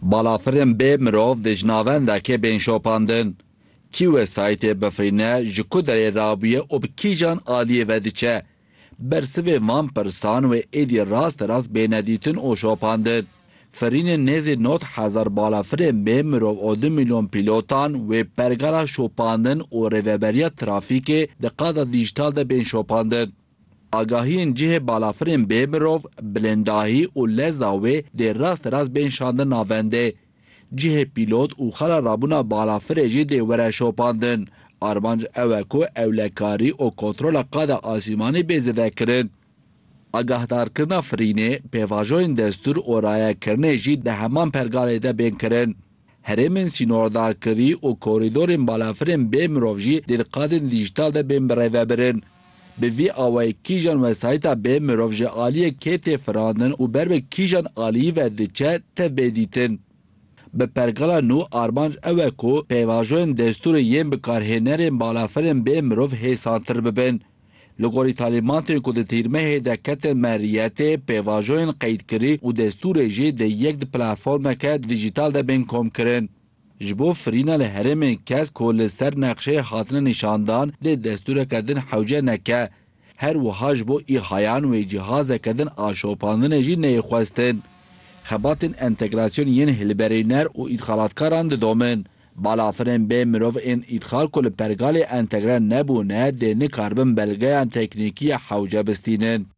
Balafirên bê mirov di ji navendekê bên şopandin. Kî wesayîtê bifirîne, ji ku derê rabûye û bi kîjan aliyê ve diçe? Bersivên van pirsan wê êdî rasterast bêne dîtin û şopandin. Firînên nêzî nod hezar balafirên bê mirov û du mîlyon pîlotan wê pergala şopandin û rêveberiya trafîkê di qada dîjital de bên şopandin. Agahiyên cihê balafirên bê mirov, bilindahî û leza wê dê rast rast bên şandin navendê. Cihê pîlot û xala rabûna balafirê jî dê were şopandin. Armanc ew e ku ewlekarî û kontrola qada asîmanî bê zêdekirin. Agahdarkirina firînê, pêvajoyên destûr û rayekirinê jî di heman pergalê de bên kirin. Herêmên sînordarkirî û korîdorên balafirên bê mirov jî dê di qadên dîjîtal de bên birêvebirin. Bi vî awayî kîjan wesayîta bê mirov ji aliyê kê tê firandin û ber bi kîjan aliyî ve diçe tev bê dîtin. Bi pergala nû armanc ew e ku pêvajoyên destûrê yên bikarhênerên balafirên bê mirov hêsantir bibin. Li gorî talîmatên ku di tîrmehê de ketin meriyetê, pêvajoyên qeydkirî û destûrê jî di yek di platformeke dîjîtal de bên komkirin. Ji bo firîna li herêmên kes ku li ser nexşeyê hatine nîşandan dê destûreke din hewce neke. Her wiha ji bo îhayan wê cîhazeke din a şopandinê jî neyê xwestin. Xebatên entegrasyon yên hilberîner û îdxalatkaran didomin. Balafirên bê mirov ên îdxal ku li pergalê entegre nebûne dê nikaribin belgeyan teknîkî ya hewce bistînin.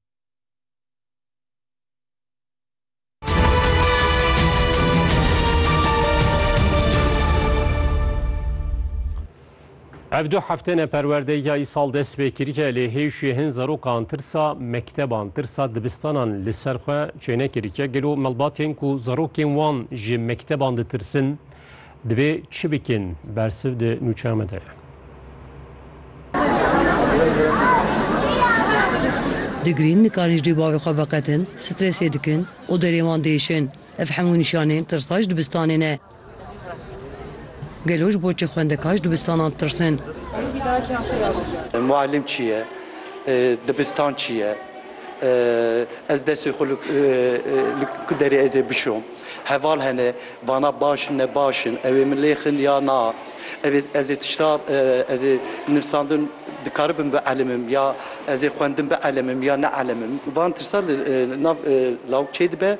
Ev du hefte ne perwerdeya îsal dest pê kiriye lê hêjiyê hin zerokan tirsa mekteban, tirsa dibistanan li ser xwe çênekiriye. Gelo malbatên ku zerokên wan ji mekteban ditirsin, Divê çi bikin? Bersiv di nûçeya me de ye. Digrîn, nikarîn ji dê bavê xwe veqetin, stresê dikin û derê wan diêşin. Ev hemû nîşanên tirsa ji dibistanê ne. Gelo ji bo çi xwendekar ji dibistanan ditirsin? Muallim çi ye? Dibistan çi ye? Ez destê xwe li ku derê ez ê bişom. Heval hene vana baş in ne baş in. Ew ê min lê xin ya na. Ev ê ez ê tişta ez ê nivsandin dikaribim bielimim ya ez ê xwendin bielimim ya neelimim. Van tirsa li nav lawik çê dibe.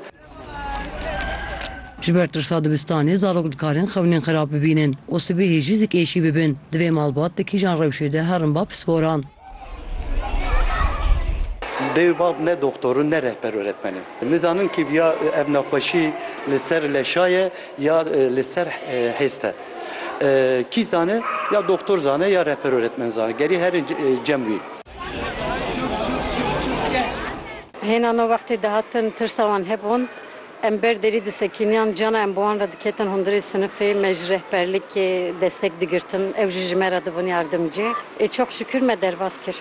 Ji ber tirsa dibistanê zarok dikarin xewnên xirab bibînin û sibehê jî zik êşî bibin. Divê malbat di kîjan rewşê de herin ba pisporan. Dê û bab ne doxtor in ne rehber û öğretmen in. Nizanin kî ya ev nexweşî li ser leşa ye ya li ser hêz te. Kî zane ya doxtor zane ya rehber û öğretmen zane. Gerî her in cem wî. Hêna no wextê dihatin tirsa wan hebûn. Em ber derî disekîniyan, ciyana em bi wan re diketin hundirê sinifê, me ji rehberlikê destek digirtin, ew jî ji me re dibûn yardimcî. Ê çok şikûr me derbas kir.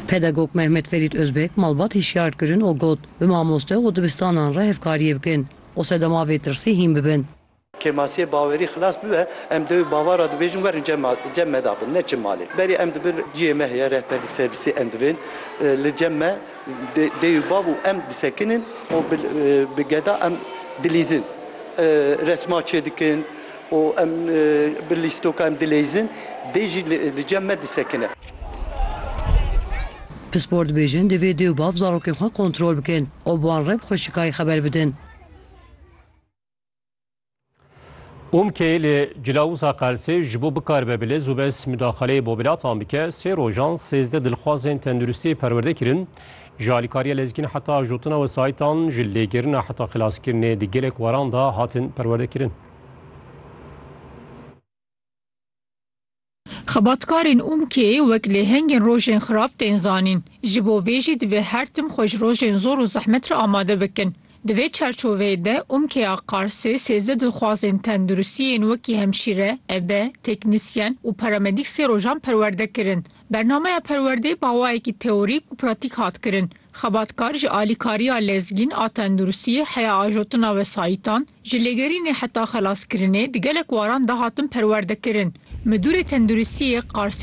Pedagog Mehmet Ferît Ozbek malbat hişyar kirin û got, Bi mamoste û dibistanan re hevkariyê bikin û sedema vê tirsê hîn bibin. Kêmasiyê bawerî xilas bibe, em dewê bava re dibêjin werin cem me dabin, neçin malê. Berê em di bin cihê me heye rehberlîk servîsê em divên li cem me dê û bav û em disekinin û bi geda em dilîzin. Resma çêdikin û em bi lîstoka em dileyzin dê jî li cem me disekine. Pispor dibêjin divê dê û bav zarokên xwe kontrol bikin û bi wan re bi xweşikayî xeber bidin. Umkê li Cilawuza Qersê ji bo bikaribe bi lez û bez midaxaleyê bobilatan bike sê rojan sêzdeh dilxwazên tenduristiyê perwerde kirin. Ji alîkariya lezgîn heta ajotina wesayîtan, ji lêgirina heta xilaskirinê di gelek waran de hatin perwerdekirin. Xebatkarên Umkê wek lêhengên rojên xirab tên zanîn. Ji bo vê jî divê her tim xwe ji rojên zor û zehmet re amade bikin. Di vê çerçoveyê de Umkeya Qarsê sêzdeh dilxwazên tenduristî yên wekî hemşîre, ebe, teknîsyen û paramedîk sê rojan perwerde kirin. Bernameya perwerdeyê bi awayekî teorîk û pratîk hat kirin. Xebatkar ji alîkariya lezgîn a tenduristiyê heya ajotina wesayîtan, Ji lêgerînê heta xelaskirinê di gelek waran de hatin perwerdekirin. Midûrê Tenduristiyê Qarsê